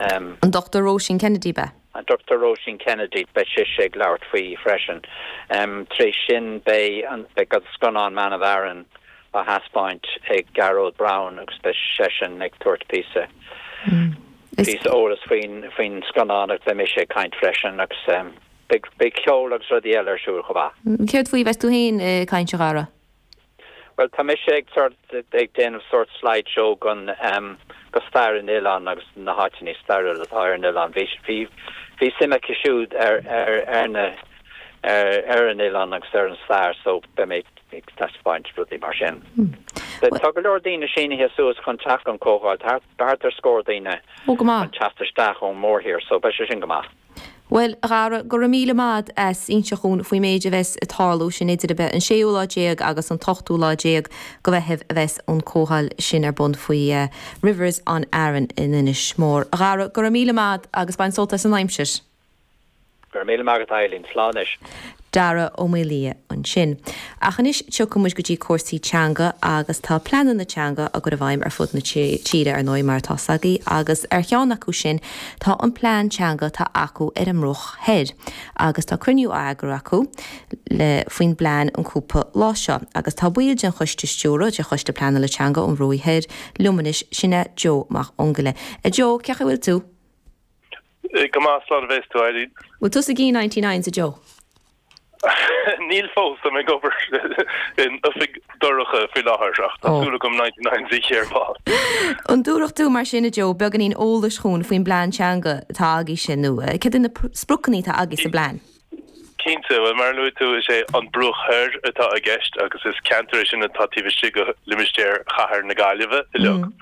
Em. An Dr. Róisín Kennedy, An Dr. Róisín Kennedy, Beidh sise ag labhairt faoi freisin. Em. Tar éis sin beidh an, beidh an scannán Man of Aran á thaispeáint ag Gearóid Brown agus beidh seisean ag tabhairt píosa, píosa eolais faoin, faoin scannán agus beidh mise ag caint freisin agus em. Beidh, beidh ceol agus rudaí eile ar siúl chomh maith. Céard faoi a bheas tú féin ag caint, a Dhara? Bhuel, tá mise ag sort ag déanamh sort slide show go, am, go stair an oileáin agus na háiteanna stairiúil atá ar an oileán. Bhí bhí bhí suim acu siúd ar ar ar na ar ar an oileán agus ar an stair so beidh mé ag taispeáint rudaí mar sin. Tá go leor daoine sínithe suas chun teacht gon comhdháil thart. Thart ar scór daoine ag teacht isteach ón mórthír so beidh sé sin go maith. Bhuel, a Dhara, go raibh míle maith agat as inseacht dhúinn faoin méid a bheas ag tarlú, sin idir ar bith, an séú lá déag agus an t-ochtú lá déag go Mheitheamh a bheas an comhdháil sin ar bun faoi Rivers on Aran in Inis Mór. A Dhara, go raibh míle maith agat agus bain sult as an aimsir. Go raibh míle maith agat Eibhlín, slán anois. Dara Ó Maoildhia ansin. Ach anois tiocfaidh muid go dtí cúrsaí teanga agus tá pleananna teanga á gcur i bhfeidhm ar fud na tíre ar ndóigh mar atá a fhios agaibh agus ar cheann acu sin tá an plean teanga atá acu ar an mbruach thoir agus tá cruinniú á eagrú acu le faoin bplean an cúpla lá seo agus tá ball den choiste stiúrtha de choiste pleanála teanga an Bhruaigh Thoir liom anois sin é Joe Mac Fhionnghaile. A Joe, cén chaoi a bhfuil tú? Go maith, slán a bhéas tú Eibhlín. An bhfuil tú ag ithe ninety nines a Joe. Níl fós, táim ag obair in oifig dorcha faoi láthair ach tá súil agam ninety nines ithe ar ball. An dtabharfá mar sin a Joe beagáinín eolais dhúinn faoin bplean teanga atá agaibhse nó céard iad na spriocanna atá agaibh sa bplean? Cinnte, bhuel mar a luaigh tú is é An Bruach Thoir atá i gceist agus is ceantar é sin atá taobh istigh go limistéar chathair na Gaillimhe uilig.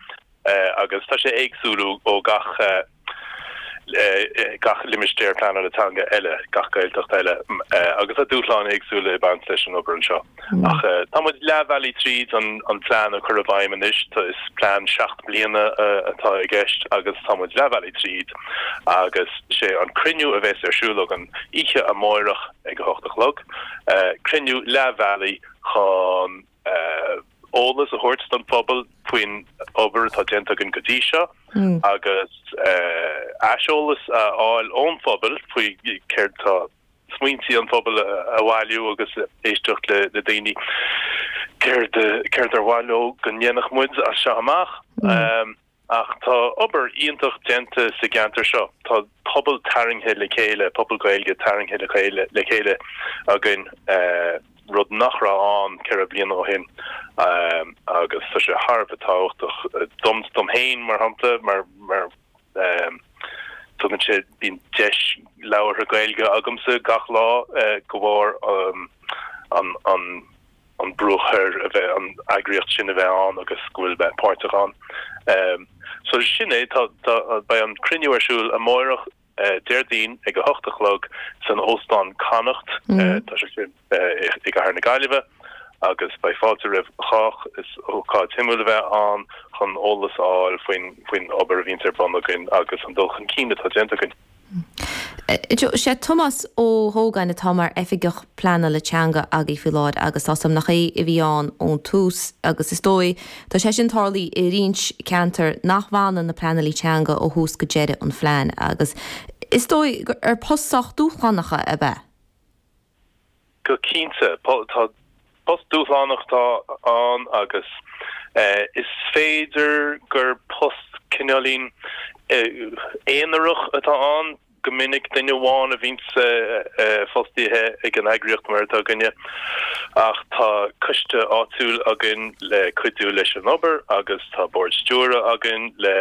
agus tá sé éagsúil ó gach gach limistéar pleanála teanga eile, gach Gaeltacht eile, agus tá dúshláin éagsúla ag baint leis an obair anseo. Ach tá muid leathbhealaigh tríd an an plean a chur i bhfeidhm anois, tá is plean seacht mbliana atá i gceist agus tá muid leathbhealaigh tríd agus sé an cruinniú a bheas ar siúl againn oíche amáireach ag a hocht a chlog, cruinniú leathbhealaigh chun eolas a thabhairt don phobal faoin obair atá déanta againn go dtí seo agus aiseolas a fháil ón phobal faoi céard atá smaointe an phobail a bhailiú agus éisteacht le daoine céard ar mhaith leo go ndéanfadh muid as seo amach. Ach tá obair iontach déanta sa gceantar seo, tá pobal tarraingthe le chéile, pobal Gaeilge tarraingthe le chéile againn, rud nach raibh ann ceithre bliana ó shin agus tá sé thar a bheith tábhachtach dom dom féin mar shampla mar mar tugann sé bíonn deis labhartha Gaeilge agamsa gach lá de bharr an an an Bruach Thoir a bheith an eagraíocht sin a bheith ann agus go bhfuil mé páirteach ann. So sin é tá tá beidh an cruinniú ar siúl amárach Déardaoin ag a hocht a chlog san Óstán Connacht tá sé sin i gcathair na Gaillimhe agus beidh fáilte roimh chách. Is ócáid shuimiúil a bheith ann chun eolas a fháil faoin faoin obair a bhíonns ar bun againn agus an dul chun cinn atá déanta againn. Sé Tomás Ó hÓgáin atá mar Oifigeach Pleanála Teanga agaibh faoi láthair agus tá a fhios agam nach é a bhí ann ón tús agus is dóigh tá sé sin tarlaithe i roinnt ceantar nach bhfanann na pleanálaithe teanga ó thús go deireadh an phlean agus is dóigh gur post sách dúshlánach a bheadh ann go cinnte. Tá, post dúshlánach atá ann agus is féidir gur post cineáilín aonarach atá ann. Go minic duine amháin a bhíonns fostaíthe ag an eagraíocht mar atá againne ach tá coiste áitiúil againn le cuidiú leis an obair agus tá bord stiúrtha againn le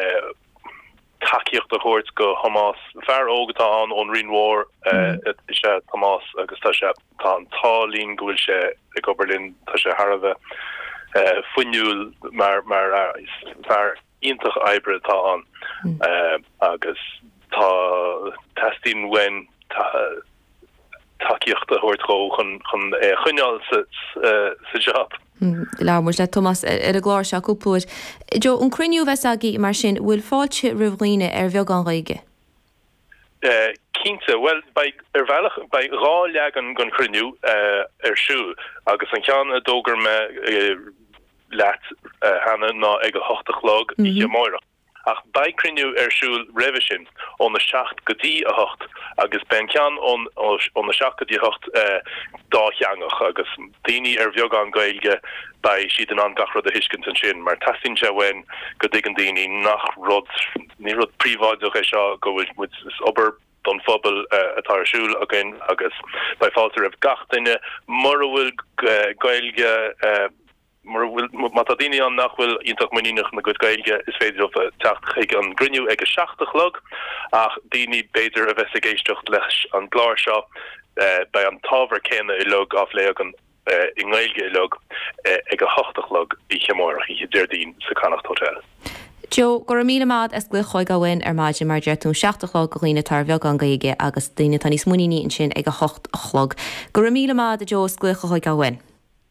tacaíocht a thabhairt do Thomás. Fear óg atá ann ón Rinn Mhór is ea Tomás agus tá sé tá an t-ádh linn go bhfuil sé ag obair linn. Tá sé thar a bheith fuinniúil mar mar fear iontach oibre atá ann agus tá teastaíonn uainn tacaíocht a thabhairt dhó chun é a choinneáil sa jab. Labhair muid le Tomás ar an gclár seo cúpla uair. Joe, an cruinniú a bheas agaibh mar sin, bhfuil fáilte roimh dhaoine ar bheagán Gaeilge? Cinnte, bhuel beidh, ar bhealach, beidh dhá leagan den chruinniú ar siúl agus an ceann a d'fhógair mé leat cheana ná ag a hocht a chlog oíche amárach. Ach beidh cruinniú ar siúl roimhe sin ón 7 go dtí 8 agus beidh an ceann ón 7 go dtí 8 dátheangach agus daoine ar bheagán Gaeilge beidh siad in ann gach rud a thuiscint ansin mar teastaíonn sé uainn go dtuigeann daoine nach rud, ní rud príobháideach é seo go bhfuil muid, is obair don phobal atá ar siúl againn agus beidh fáilte roimh gach duine mura bhfuil Gaeilge. Mura bhfuil, má tá daoine ann nach bhfuil iontach muiníneach ina gcuid Gaeilge, is féidir leo teacht chuig an gcruinniú ag a seacht a chlog, ach daoine, b'fhéidir, a bheas ag éisteacht leis an gclár seo, beidh an t-ábhar céanna uilig á phlé againn, i nGaeilge uilig, ag a hocht a chlog oíche amárach, oíche Déardaoin, sa Connacht Hotel. Joe, go raibh míle maith ad as glaoch a chur orainn ar maidin, mar a deir tú, an seacht a chlog do dhaoine atá ar bheagán Gaeilge agus daoine atá níos muiníní ansin ag a hocht a chlog. Go raibh míle maith ad Joe as glaoch a chur orainn.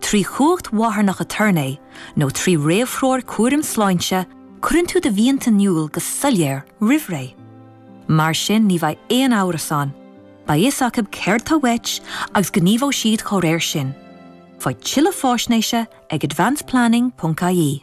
Trí chumhacht mharthanach aturnae nó trí réamhthreoir chúraim sláinte, cuireann tú do mhianta in iúl go soiléir roimh ré. Mar sin ní bheidh aon amhras ann, beidh fhios acu céard atá uait agus gníomhóidh siad dhá réir sin. Faigh tuilleadh faisnéise ag advanceplanning.ie.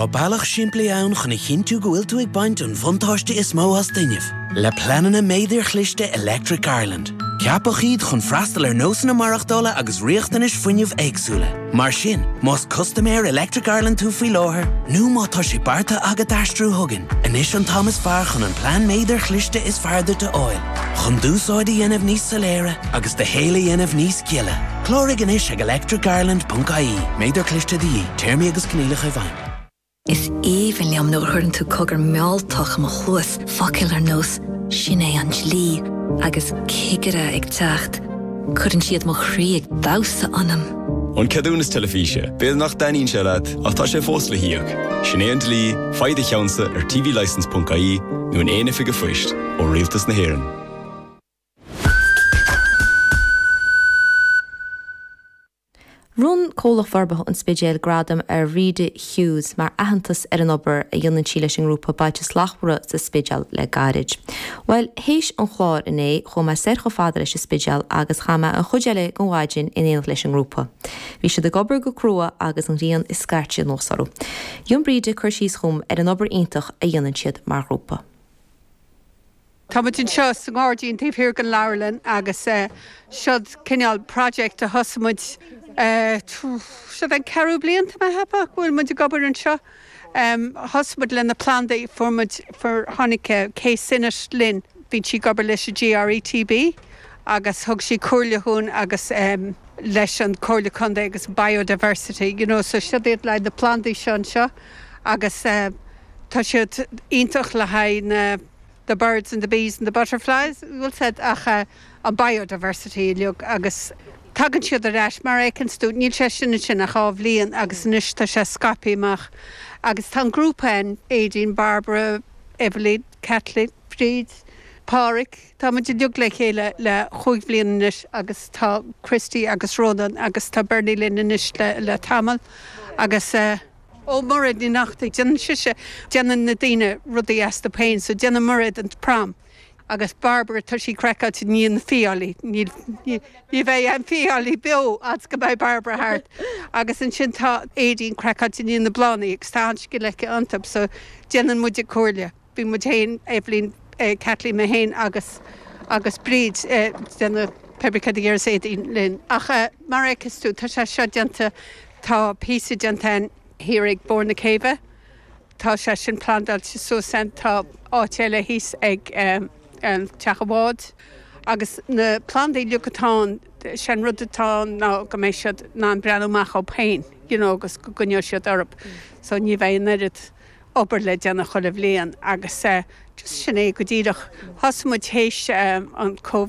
Tá bealach simplí ann chun a chinntiú go bhfuil tú ag baint an buntáiste is mó as d'fhuinneamh. Le pleananna méadair chliste Electric Ireland, ceapadh iad chun freastal ar nósanna maireachtála agus riachtanais fuinnimh éagsúla. Mar sin, más custaiméir Electric Ireland tú faoi láthair nó má tá sé beartaithe agat aistriú chugainn, anois an t-am is fearr chun an plean méadair chliste is fearr duit a fháil. Chun d'úsáid a dhéanamh níos soiléire agus do shaol a dhéanamh níos gile. Cláraigh anois ag electricireland.ie. Méadar cliste de dhíth. Téarmaí agus coinníollacha i bhfeidhm. Is aoibhinn liom nuair a chuireann tú cogar mealltach i mo chluas, focail ar nós 'Sin é an dlí' agus 'Cigire ag teacht'. Cuireann siad mo chroí ag damhsa ionam. An ceadúnas teilifíse, b'fhéidir nach dtaitníonn sé leat ach tá sé fós le híoc. Sin é an dlí, faigh do cheannsa ar tvlicence.ie nó in aon oifig an phoist ó Rialtas na hÉireann. Bhronn Comhlacht Forbartha an Spidéil gradam ar Bhríd Hughes mar aitheantas ar an obair a dhéanann sí leis an ngrúpa Bailte Slachtmhara sa Spidéal le gairid. Bhuel, théis an chláir inné, chuaigh mé soir chomh fada leis an Spidéal agus chaith mé an chuid eile den mhaidin in éineacht leis an ngrúpa. Bhí siad ag obair go crua agus an ghrian ag scairteadh anuas orthu. Rinne Bríd cur síos dhom ar an obair iontach a dhéanann siad mar ghrúpa. Tá muid anseo sa ngairdín taobh thiar den leabharlann agus siod cineál project a thosaigh muid siod an ceathrú bliain atá mé a cheapadh go bhfuil muid ag obair anseo. Thosaigh muid leis na plandaí, fuair muid, fuair, tháinig Kay Sinnott linn, bíonn sí ag obair leis an GRETB agus thug sí comhairle dhúinn agus leis an Comhairle Contae agus Biodiversity you know so siod iad le haghaidh na plandaí seo anseo agus tá siad iontach le haghaidh na the birds and the bees and the butterflies bhuel sea ach an biodiversity uilig agus tagann siad ar ais mar a fheiceanns tú níl sé sin ansin ach dhá bhliain agus anois tá sé scaipthe amach agus tá an grúpa ann Éadaoin, Barbara, Eveleen, Kathleen, Bríd, Páraic tá muid uilig le chéile le chúig bhliana anois agus tá Christy agus Rónán agus tá Bernie linn anois le tamall agus eh. Ó, Mairéad Ní Neachtain, déanann sise, déanann na daoine rudaí astu féin, so déanann Mairéad an prom. Agus Barbara, tá sí craiceáilte i ndiaidh na fiailí, ní bheidh aon fiailí beo fhad is go mbeidh Barbara thart. Agus ansin tá Éadaoin craiceáilte i ndiaidh na bláthannaí agus tá an-scil aici iontub so déanann muide comhairle. Bíonn muid féin, Eibhlín, Kathleen mé féin agus agus Bríd ag déanamh pébrí céard a déarfas Éadaoin linn. Ach mar a fheiceas tú tá sé seo déanta, tá píosa déanta thiar ag barr na céibhe, tá sé sin plandáilte suas ann, tá áit eile thíos ag teach an bháid agus na plandaí uilig atá ann, sé an rud atá ann ná go mbeidh siad in ann breathnú amach dóibh féin, you know, agus go gcoinneoidh siad orthu so ní bheidh an oiread. obair le déanamh chuile bhliain agus just sin é go díreach thosaigh muid théis an Covid.